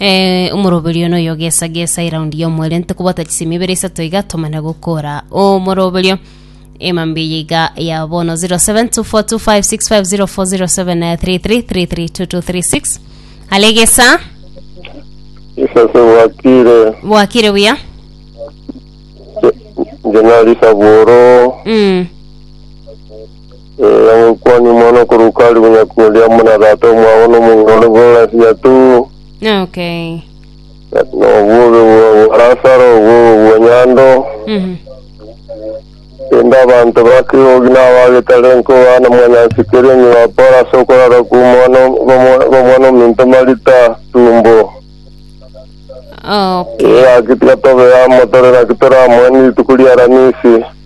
Eh, omoroberio one oyogesagesa eraundi y'omwerente kobwata chisemi ibere isato iga tomana gokora omoroberio emambi eye iga ya bono 07242565040733332236 alegesa isase bwakire bwakire buya nje nari saboro mm. Ee, ogokwania omwana okoruka aria bonyaku oria amo na tata omwabo nomong'ina ore bw'engelasi ya tuu. Okay. Kati nobobe bwa bwa Lasaro, obobe bwa nyando, Mhm. rende abanto ba kegogi na abagetare nkoba na mwanyansi keria onye bapore ase okorara kw'omwana kw'omwa- kw'omwana ominto Marita tumbo. Okay. Ee, gaki tiga tobe amo, tore naki tore amo, ni rituko ri'Aramisi.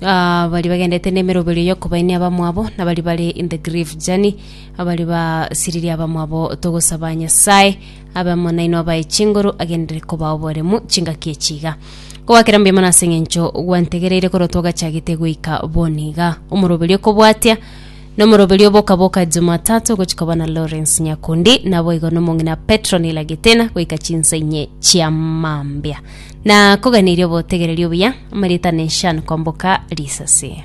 baria bagendete nemeroberio y'okobaenia abamwabo, na baria bare in the grief journey, abaria basiririe abamwabo, togosaba Nyasae abe amo nainwe abae chinguru agenderere kobaa oboremu chingaki echi iga. Kogakera mbuya mono ase eng'encho gwantegereire korwa twagachagete goika bono iga. Omoroberio okobwatia Nomoroberio o boka boka Jumatatu ogochika bana Lawrence Nyakundi, naboigo nomong'ina Petronila Gitena goika chinsa inye chia mambia. Nakoganirie obotegereri obuya, amarieta Nishan kwamboka risasi.